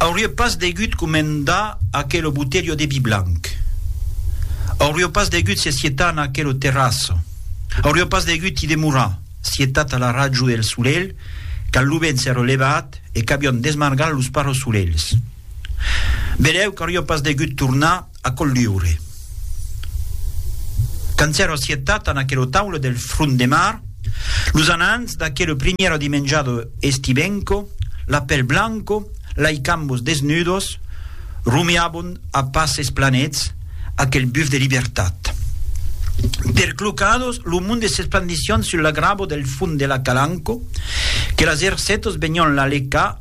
Aurie pas degut comendar aquelo botelho de vi blanc. Aurio pas degut se sietar en aquelo terraço. Aurio pas degut i demorar, sietat a la rajo e el solelh, quand lo vent s'èra levat e qu'avion desmargat los parrosolelhs. Belèu qu'aurio pas degut tornar A colliure. Quand s'èra assetat en aquela taula del front de mar, los anants d'aquela primièra dimenjada estibenca, la pel blanca, lei cambos desnudos, rumiabon a passes planets aquel buf de libertat. Perclocados, lo monde s'esplandissián sul la grava del fond de la calanca, que las ercetas venián la lecar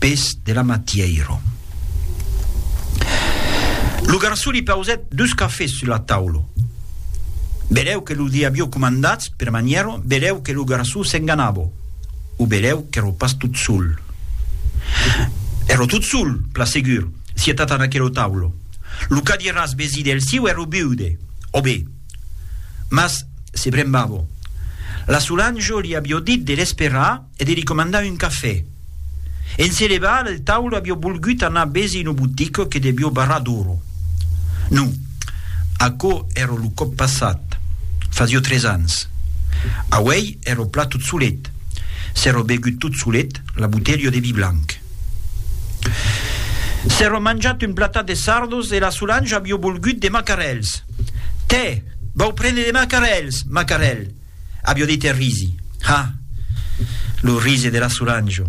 pes de la matièira. Lo garçon li pausèt dus cafés sus la taula. Belèu que lo li avió comandats per manièra, belèu que lo garçon s'enganava, o belèu qu'èra pas tot sol. Èra tot sol, pla segur, sietat en aquela taula. Lo cadiràs vesí del siu èra viude, ò be, mas se brembava. La Solange li avió dit de l'esperar, e de li comandar un cafè. En se levar del taule avió volgut anar besi lo botic que devió barrar d'oro. Non, aquò èra lo còp passat, fasió tres ans. Auèi èra plat tot solet, s'èra begut tot solet la botelha de vi blanc. S'èra manjat un platat de sardos e la Solange avió volgut de macarèls. Tè, vau prene de macarèls, macarèl! Avió dit e risi. Ha! Lo rise de la Solange,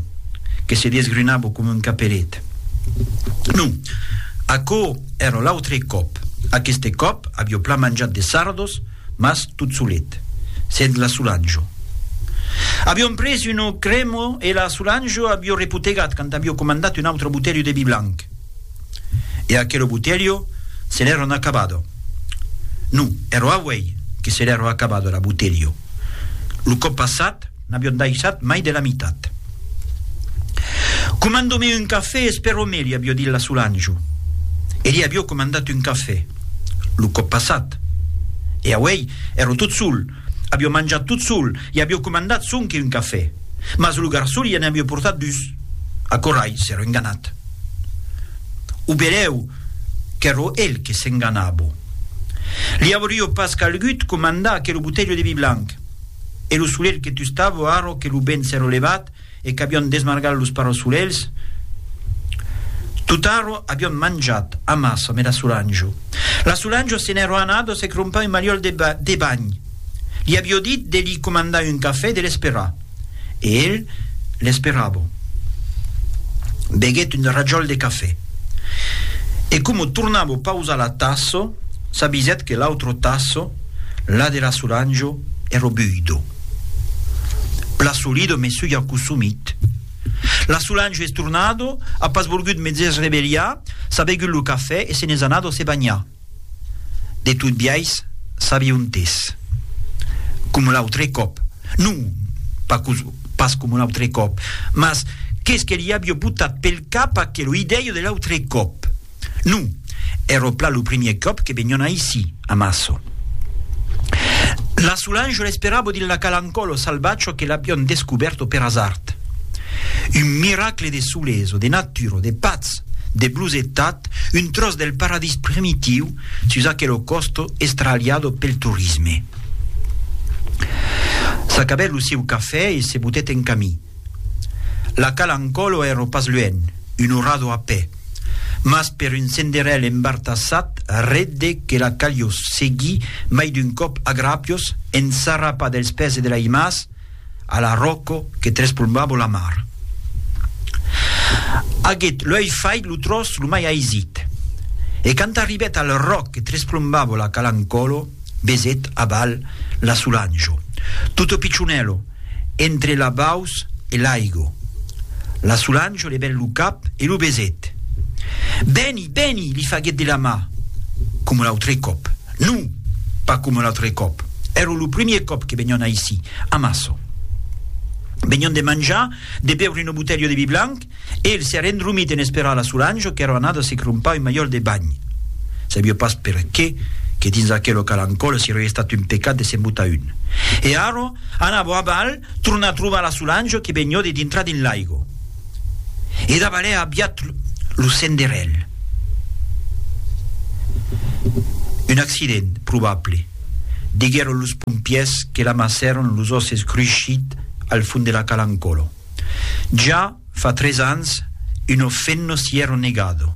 que se desgrunava coma un caperet. Non, aquò èra l'autre còp. Aqueste còp avió plan manjat de sardos, mas tot solet, sens la Solange. Avión pres una crema e la Solange avió repotegat quand avió comandat un autre botelho de vi blanc. E aquelo botelho se l'èron acabado. No, ero auei que se l'èro acabado era botelho. Lo còp passat n'avion daissat mai de la mitat. Comando-me un cafè, espero-me, li avió dit la Solange. E li avió comandat un cafè, lo còp passat. E auei, ero tot sol, Avió manjat tot sol e avió comandat sonque un cafè. Mas lo garçon i en avió portat dus. Aquò rai s'èro enganat. O berèu qu'èro el que s'enganabo. Li aurió pas calgut comandar aquelo botelho de vi blanc. Èro solelh que tustavo arro que lo ben s'èro levat, e qu'avion desmargat los parossolèls, totaro avion manjat amassa me la Solanjo. La Solanjo se n'èro anada se crompar un maliòl de, de banh. Li avio dit de li comandar un cafè e de l'esperar. E el l'esperava. Beguèt un rajòl de cafè. E coma tornava pausar la tassa, s'avisèt que l'autre tassa, la de la Solanjo, èro buido. Plaçolido mesuga aquò somit. La Solange es tornado, a pas volgut me dès rebelhar, s'a begut lo cafè e se n'es anado se banhar. De tot biais, s'avi ontès. Coma l'autre còp. Non, pas coma l'autre còp. Mas qu'es que li avi botat pel cap aquelo idèio de l'autre còp. Non, ero plan lo primier còp que venion aicí, a Maço. La Solange l'esperabo dins la Calancollo salvatge que l'avion descobèrto per asard. Un miracle de soles o de natura o de patz, de blosetat, un tròç del paradís primitiu sus aquelo còsto estralhado pel torisme. S'acabèt lo sieu cafè e se botèt en camí. La Calancòlo èro pas luènh, un orrador a pè, mas per un senderèl embartassat ret de que la calió seguir mai d'un còp a gràpios ensarrapat dels pès e de la imàs a la ròco que trespolmbava la mar. Aguèt luèih fait lo tròç lo mai aisit, e quand arribèt al ròc que tresplombava la Calancòlo, besèt aval la Solanjo. Tutto piccionèlo, entre la baus e l'aigo. La Solange levèt lo cap e lo besèt. Beni, beni! li faguèt de la mà. Coma l'autre còp. Non! Pas coma l'autre còp. Èra lo primièr còp que venián aicí, amassa. Venián de manjar, de beure una botelha de vi blanc, E el s'èra endromit en esperar la Solange qu'èra anada se crompar un malhòrt de banh. Sabió pas perqué que dins aquel local en còla se rei estat un pecat de se'n botar un. E ara, anava a balh tornar trobar la Solange que venió de dintrar dins l'aigo. E dabalèa aviat lo senderèl. Un accident probable, diguèron los pompièrs que l'amassèron los òsses cruishits al fond de la cala en còla. Ja fa tres ans, uno fenno si ero negado.